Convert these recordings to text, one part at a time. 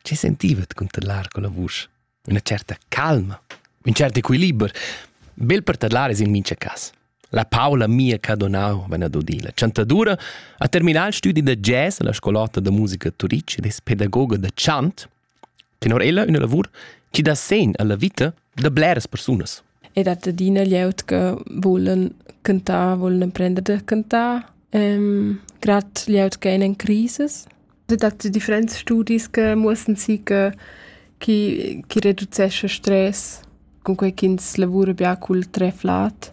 Che sentivet cunter l'ar con la vusch? Üna certa calma, ün cert equiliber, bel per tadlar es in mincha cas. La Paula mia ch'ha donau vena dodila chantadura ha terminà il studi da jazz alla scolota da musica Turic ed es pedagoga da chant Tenor ella üna lavur chi dà segn alla vita da bleras persunas. Ed dat adina glieud che volen cantar, volen emprender da cantar, ähm, gerade glieud che in crisis. Es dat differents studis che muossen si che chi, chi reducesce stress, cun quei ch'ins lavura bia cul treflat.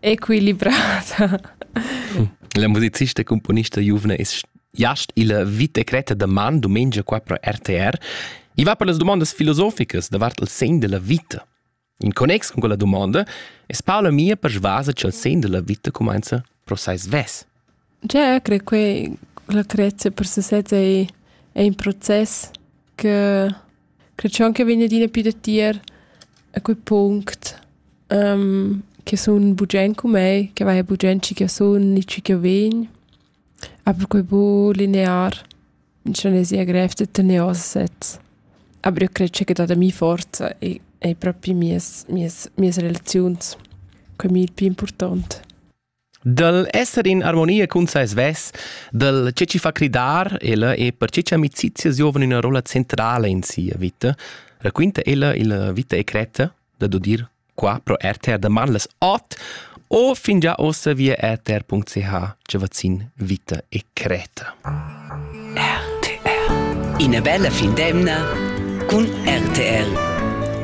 equilibrada. La musicista e componista giuvna es jast illa vita cretta da man dumengia qua pro RTR. I va per las domandas filosoficas davart il sen della vita. In connex con quella domanda es Paola mia persvasa cha'l sen della vita cumainza pro sai svess. Jeu crei quei l'acrezia per sesez ei, ei in process che crei schon che vegn adina più da tier a quei punct che sun bugen cu mei, che vai bugen schi ch'jeu sun ni schi ch'jeu vegn. Aber quei buc linear, schon ei sia grev da tener oz sez. Aber io crei che dat a mi forza e ei propi mias mias mias relaziuns, quei mi il pli impurtont. Dal esser in armonia cun sai svess, dal che ci fa cridar ella e per che amicizia giovane una rolla centrale in sia vita, raquinta ella il vita e creta da dodir qua pro RTR da Marles Ot o fin già ossa via rtr.ch ce vaccin vita e creta. RTR Ina bella fin d'emna cun RTR.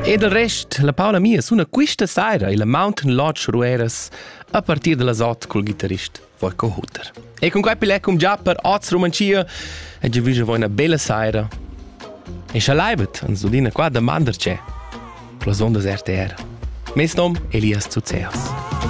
E del rest, la Paula mia suna quista saira illa Mountain Lodge Rueras A partir da las ot cul ghitarrist Voiko Hutter. E con quai pile cum già per oz Romancia e giu vige voi una bella saira. E scha leibet ans dudina qua da mander c'è. Plas ondas RTR. Mes nom Elias Zuzeos.